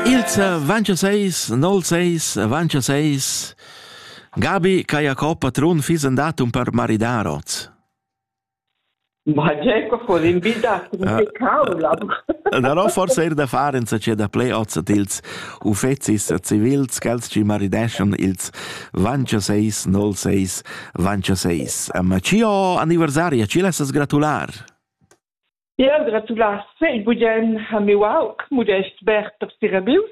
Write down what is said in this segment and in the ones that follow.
Ils 26, 06, 26, Gabi ca Jacob patrun fissen datum per maridar oz. Ma Jacob ho invidat un cavla. Da no forse er da far in sace da play oz at ils uffecis civils ch'els ci marideschon ils 26 06 26. Ma cio anniversaria ci lessas gratular. Jeu gratulas fetg bugen ha miu aug Mudest Bert da Sirabius.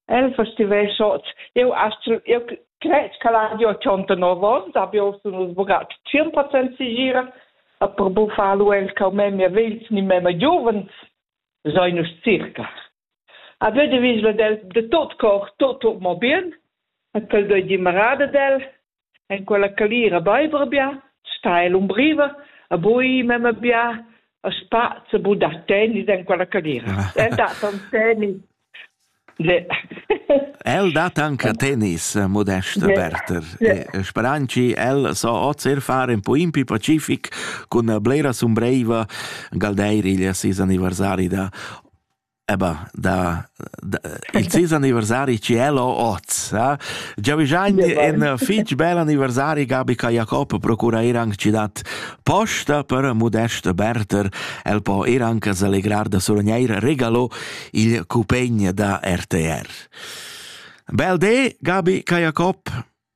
El festivescot eu astgel eu cred ch'al hagi 89 ons, abio sun nus bugat 100% sigira, a per buffar lu el cau memia vegls ni memia giuvens, sai nus circa. A vede visla del de tot cor, tot tot mo bien, a quel doi di marada del, En quella calira beiva bia, sta ella umbriva, ha bui memma bia, ha spaz e bu dar tennis en quella calira. El dat ton tennis. El dat anche tennis, modesta Berter. Speranci, el so oz er far en Poimpi Pacific cun blera sumbreva Galdeiriglia sis anniversari da Eba, da, da il ses anniversari ci è lo oz. Eh? Già vigagn in fitch bel anniversari Gabi ca Jacob procura ir anche ci dat posta per Modest Berter. El po ir anche selegrar da suragneir regalo il cupegn da RTR. Bel de, Gabi ca Jacob.